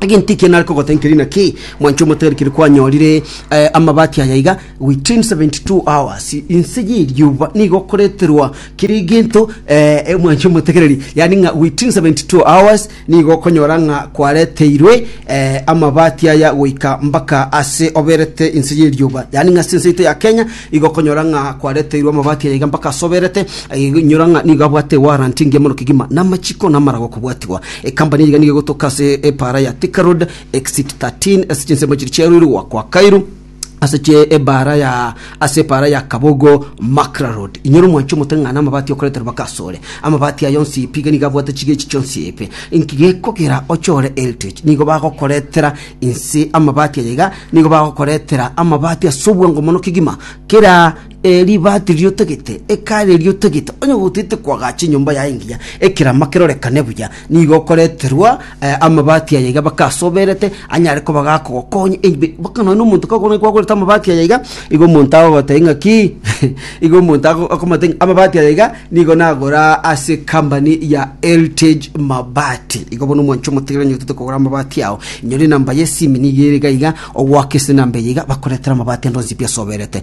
Egento ekiya nare kogotenkeria naki, mwanche omotebia keri kwanyorire eh, amabati aya iga within 72 hours inse y'erioba nigo okoreterwa kere egento eh, eh, mwanche omotegereri yani ng'a within 72 hours nigo okonyora ng'a kwareteirwe eh, amabati aya goika mpaka ase oberete inse y'erioba yani ng'a ase ense yaito ya Kenya igo okonyora ng'a kwareteirwe amabati aya iga mpaka ase oberete eh, igo inyora ng'a nigo abwate warrant engiya mono kegima namachiko namarago okobwatigwa Ekambani eyiga nigo egotoka ase epaara ya Thika Road, exit 13, ase chinsemo chiri chiaruirwe goakwa Kairu, ase chie ebaara ya ase epaara ya Kabogo Makra Road. Inyora omwanchi omote ng'ana amabati okorete rubaka asore. Amabati aya onsi ipi iga nigo abwate chigechi chionsi ipi. Inki gekogera ochore heritage? Nigo bagokoretera inse amabati aya iga, nigo bagokoretera amabati ase obwango mono kegima. Kera Eribati riotagete, ekare riotagete, onye gotete koagacha enyomba yaye engiya, ekerama kerorekane buya, nigo okoreterwa eh, amabati aya iga bakasoberete, anyare koba gakogokonya ebi- baka nonya omonto kagokona kwagorete amabati aya iga, igo omonto agogotebia ng'a ki, igo omonto ago- akomotebia ng'a amabati aya iga, nigo nagora ase ekambani ya Heritage Mabati. Igo bono omwancho omotigire onye otete kogora amabati ao, inyore enamba yesimi nigo ere iga iga, ogoaka ase enamba eye iga, bakoretere amabati ande onsi pi asoberete.